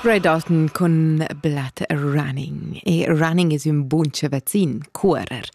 Red Orton cun Blood Running. E Running es ün bun vaccin, cuorer.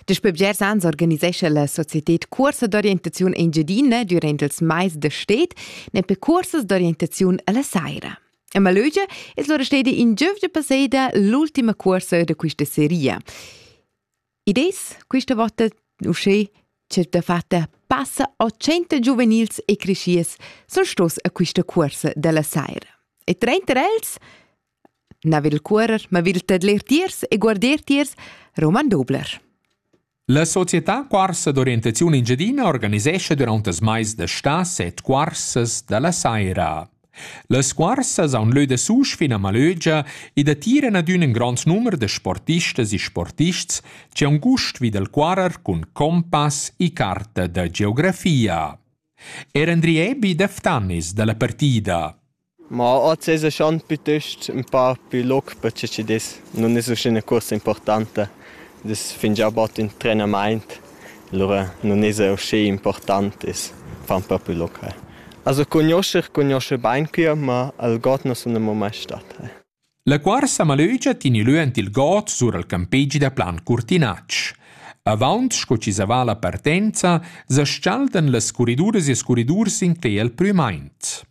Daspö bgers ans organisescha la societed cuorsa d'orientaziun Engiadina durant ils mais da stet, nempe cuorsas d'orientaziun alla saira. A Malögia es lura steda in giövgia passeda l'ultima cuorsa da quista seria. Id es quista vota uschè ch'el dafatta passa 800 giuvenils e creschiers sun stos a quista cuorsa da la saira. E trenter els na vil cuorrer, ma vil tadler tiers e guarder tiers Roman Dobler. La società Cuorsa d'orientaziun Engiadina organisescha durant els mais da stà set cuorsas da la saira. Las scuarsas haun lö dasusch fin a Malögia e datiran adüna ün grand numer da sportistas e sportists chi haun gust vi dal cuarrer cun compass e carta da geografia. Er Andri Ebi da Ftannis da la partida. Ma oz es schon piuttost ün pa plü loc per chi chi'd es. Nun es uschè üna cuorsa importanta. Ed es fingià bod ün trenamaint. Lura nun esa uschè important, e's fan propi local. Also cugnuoscher cugnuoscha bain quia, ma al god nu sun amo mai stat. La cuorsa malögia tini lö ant il god sur al campegi da Plan Curtinatsch. Avaunt sco chi zavà la partenza, s'aschaldan las curriduras e s curridurs in cler al prümaint.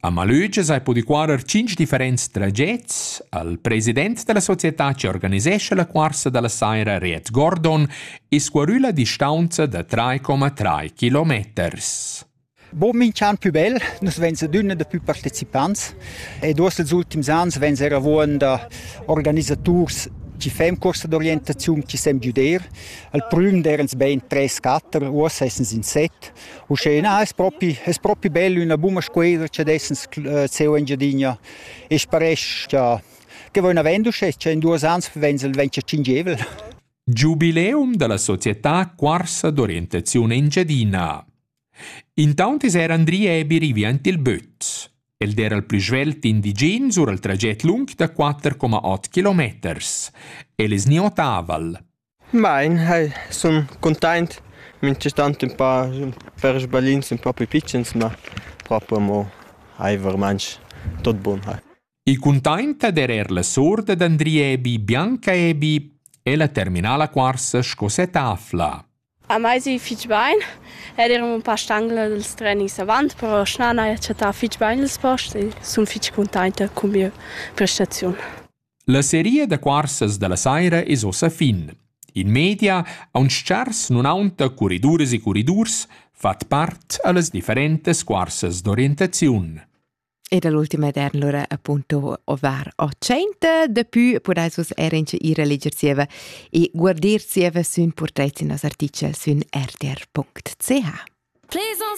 A Malögias hai pudü cuorrer tschinch differents tragets. Al president da la società chi organisescha la cuorsa da la saira Riet Gordon es scuarü la distaunza da 3,3 kilometers. Bo minch'an pü bel, nus vegns adüna da pü partecipants ed uoss els ultims ans vegns eir avuond da organisaturs chi fem corsa d'orientaziun, chi sem güder. Al prüm derens bain 3-4, uossa essens in set. Uschè na es propi es propi bel üna buna scueda cha dessens seo Engiadina e sparesch cha che vain avend uschè cha in duos ans venza'l vendscher tschingevel. Giubileum dalla società Corsa d'orientazione Engiadina. Intaunt es er Andri Ebi rivi aint il böt. El d'era il plü svelt indigen sur il traget lung da 4,8 km. El es ni otaval, Bain, hai sun cuntaint, minchatant ün pa per sbalins ün pa pü pitschens, ma propi amo hai vermainch tot bun hai. I cuntainta d'eir eir la suorda d'Andriebi bianca Ebi e la terminala cuorsa sco setafla. A mai si fich bain, ed eir ün pa stangla dals trenis avant, però snan haja chattà fich bain ils post e sun fich cuntainta cun mia prestaziun. La seria da cuorsas dalla saira es ussa fin. In media aunch tschars nun aunta curriduras e curridurs fat part a las differentas cuorsas d'orientaziun. E dall'ultima ed lura appunto over o tschenta dapü podais vus er inche ir a leger zieva e guardir zieva sün portret in nos artichel sün rtr.ch. Plaisance